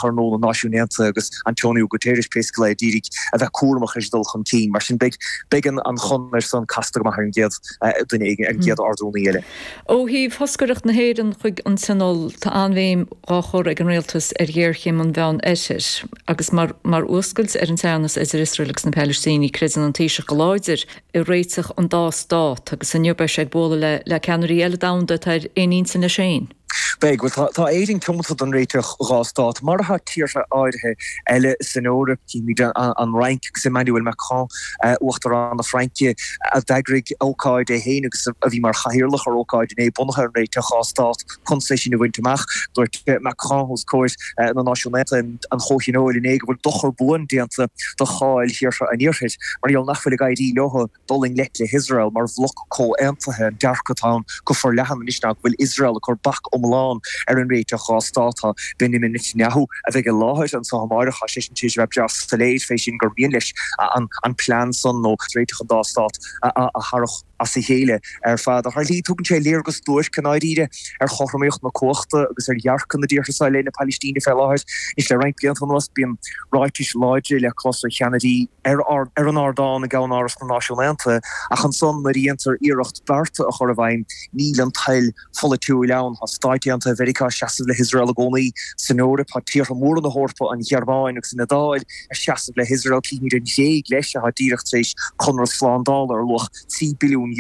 Thurnóil na Náisiún Aontaithe agus Antonio Guterres pé scéal, ag iarraidh a bheith cúramach leis an dul chun cinn. Mar sin beidh an chonair san casta go maith ar an gcéad duine eile, ar an gcéad Ard-Rúnaí eile. Ó thaobh thoscaireacht na hÉireann chuig an Tionól, tá an-bhéim dhá chur ag an Rialtas ar ghéarchéim an Mheán Oirthir, agus mar fhuascailt ar an teannas idir Iosrael agus na Palaistínigh, creideann an Taoiseach go láidir i réiteach an dá stát, agus inniu beidh sé ag bualadh le ceannairí eile domhanda atá ar aon intinn leis féin. Beidh. Bhuel, tá, tá Éirinn tiomanta don réiteach dhá stát, mar atá tíortha áirithe eile san Eoraip. Címid an Fhrainc agus Emmanuel Macron, Uachtarán na Fraince, a d'eagraigh ócáid é féin agus a bhí mar chathaoirleach ar ócáid inné bunaithe ar an réiteach dhá stát chun sé sin a bhaint amach. Dúirt Macron os comhair na Náisiún Aontaithe, an Chomhthionóil inné go bhfuil dochar buan déanta do cháil thíortha an Iarthair mar gheall nach bhfuil ag éirí leo. dul i ngleic le hIosrael mar bhloc comhaontaithe, an dearcadh atá ann go forleathan anois ná go bhfuil Iosrael ag cur bac iomlán ar an réiteach dhá stát. Tá Benjamin Netanyahu, a bheidh i láthair annso amáireach, tá seisean tar éis a bheith breá soiléir fé sin gur mian leis an plean san nó réiteach an dá stát a tharrach as a chéile ar fad. Ar shlí tugann sé léargas duairc i ndáiríre ar chothromaíocht na cumhachta agus ar dhearcadh na dtíortha seo i leith na Pailistíne fé láthair. Anois le roinnt blianta anuas bíonn ráitis láidre le clos ó cheannairí na. ar an ardán i gCeann-Áras na Náisiún Aontaithe, ach ansan nuair a dhéantar iarracht bearta a chur i bhfeidhm níl an toil pholaitiúil ann. Tá Stáit Aontaithe Mheiriceá ag seasamh le hIosrael i gcónaí. San Eoraip tá tíortha móra na hEorpa, an Ghearmáin agus an Iodáil, ag seasamh le hIosrael. Címid an Ghréig leis, atá díreach tar éis conradh slándála ar luach €3 billiún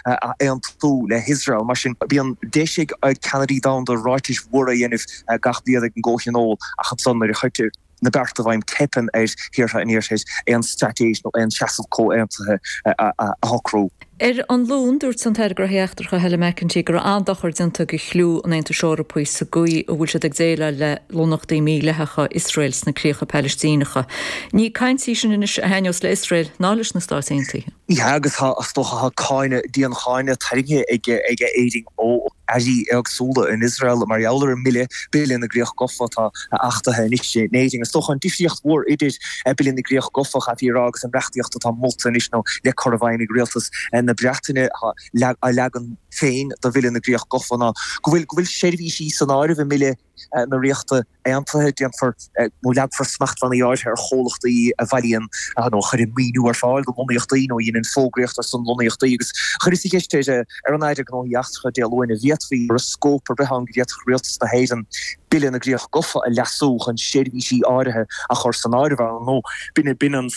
a aontú le hIosrael. Mar sin bíonn deis ag ceannairí domhanda ráitis mhóra a dhéanamh gach bliain ag an gComhthionól, ach ansan nuair a chuirtear. na bearta i bhfeidhm, teipeann ar thíortha an Iarthair aon straitéis nó aon seasamh comhaontaithe a shocrú. Ar an Luan, dúirt an tAire Gnóthaí Eachtracha Helen McEntee go raibh an-dochar déanta do chliú an Aontais Eorpaigh sa gcaoi a bhfuil siad ag déileáil le lonnachtaí mídhleathacha Iosrael sna críocha Palaistíneacha. Ní Ní caint í sin anois a thaitneos le hIosrael ná leis na Stáit Aontaithe. Agus is dócha tá cáineadh, dian-cháineadh, tarraingthe ag Éirinn ó. airí éagsúla in Iosrael mar gheall ar an mBille, Bille na gCríoch Gofa, atá achtaithe anois in Éirinn. Is dócha an difríocht mhór idir Bille na gCríoch Gofa, chaithfí a rá, agus an reachtaíocht atá molta anois nó le cur i bhfeidhm ag Rialtas na Breataine, a leagan féin de Bhille na gCríoch Gofa, ná go bhfuil seirbhísí san áireamh i mBille na Ríochta Aontaithe, déanfar nó leagfar smachtbhannaí áirithe ar chomhlachtaí a bhailíonn nó a chuireann maoiniú ar fáil do lonnaíochtaí nó a dhéanann fógraíocht ar son lonnaíochtaí agus chuireas an cheist ar an Aire Gnóthaí Eachtracha Dé Luain an bhféadfaí go raibh scóip ar bith ann go bhféadfadh Rialtas na hÉireann Bille na gCríoch Gofa a leasú chun seirbhísí áirithe a chur san áireamh ann nó b'in an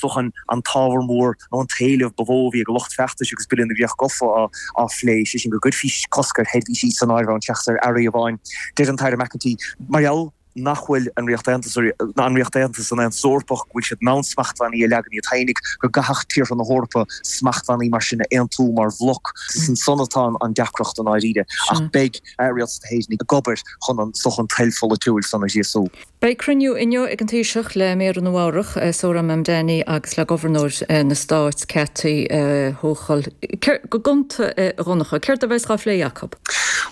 ábhar mór nó an t-éileamh ba mhó a bhí ag lucht feachtais agus Bille na gCríoch Gafa á phlé, sé sin go gcuirfí cosc ar sheirbhísí san áireamh ann seachas ar earraí amháin. Deir an tAire McEntee mar gheall nach bhfuil an Ríocht Aontaithe ná an Ríocht Aontaithe san Aontas Eorpach, go bhfuil siad in ann smachtbhannaí a leagan iad féin ach go gcaithfeadh tíortha na hEorpa smachtbhannaí mar sin a aontú mar bhloc. Is ansan atá an deacracht i ndáiríre. Ach beidh Rialtas na hÉireann ag obair chun an toil pholaitiúil san a ghríosú. Beidh cruinniú inniu ag an Taoiseach le Méara Nua Eabhrac, Zohran Mamdani agus le Gobharnóir na Stáit, Kathy Hochul. Go gonta, a Dhonncha, céard a bheas dhá phlé acu?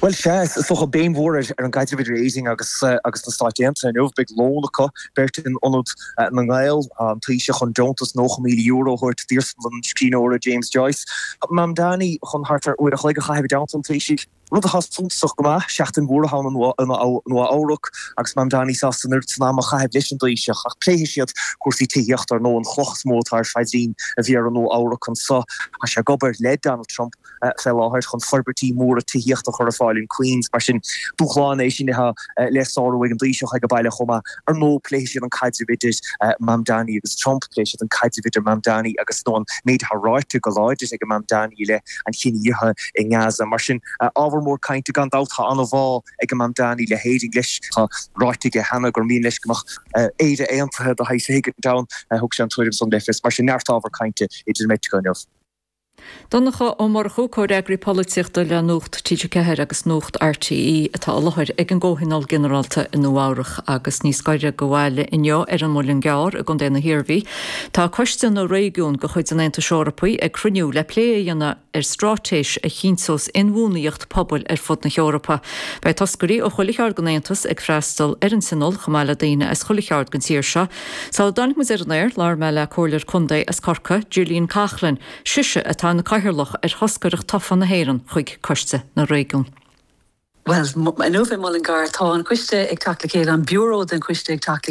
Bhuel, sea, is dócha, béim mhór ar an gcaidreamh idir Éirinn agus na Stáit Aontaithe inniu. Beidh lón acu beirt in Ionad na nGael, an Taoiseach chun deontas €90,000 a thabhairt d'iarsmalann an scríbhneora James Joyce, Mamdani chun thart ar uair a chloig a chaitheamh i dteannta an Taoisigh. Rud atá suntasach go maith, seachtain mhór atá againn i Nua Eabhrac agus Mamdani sásta an oiread san am a chaitheamh leis an dTaoiseach ach pléifidh siad cúrsaí tithíochta ar ndóigh, an chloch is mó atá ar phaidrín an Mhéara i Nua Eabhrac anso. Tá sé ag obair le Donald Trump fé láthair chun forbairtí móra tithíochta a chur ar fáil in Queens mar sin dúshlán é sin atá le sárú ag an dTaoiseach aige baile chomh maith. Ar ndóigh pléifidh siad an caidreamh idir Mamdani agus Trump, pléifidh siad an caidreamh idir Mamdani agus nó an méid atá ráite go láidir ag Mamdani i leith an chinedhíothaithe i nGaza. Mar sin ábhar mór cainte gan dabht. Tá an-bhá ag Mamdani le hÉirinn leis. Tá ráite aige cheana gur mian leis go mbeadh Éire aontaithe do shaghas éigint ann. Thug sé an tuairim san le fios. Mar sin neart ábhar cainte idir an bheirt acu inniu. Donncha Ó Murchú, Comhfhreagraí Polaitíochta le Nuacht TG4 agus Nuacht RTÉ atá i láthair ag an gComhthionól Ginearálta i Nua Eabhrac agus níos gaire do bhaile inniu ar an Muileann gCearr i gContae na hIarmhí. Tá Coiste na Réigiún de chuid an Aontais Eorpaigh ag cruinniú le plé a dhéanamh ar straitéis a chinnteos inbhuanaíocht pobail ar fud na hEorpa. Beidh toscairí ó chuile cheard den Aontas ag freastal ar an Tionól chomh maith le daoine as chuile cheard den tír seo. Sula dtáinig muid ar an aer, labhair mé le Comhairleoir Contae as Corcaigh, Gillian Coughlan, sise atá ina cathaoirleach ar thoscaireacht tofa na hÉireann chuig Coiste na Réigiún. Bhuel, inniu i Mullingar tá an coiste ag teacht le chéile, an Biúró den choiste ag teacht le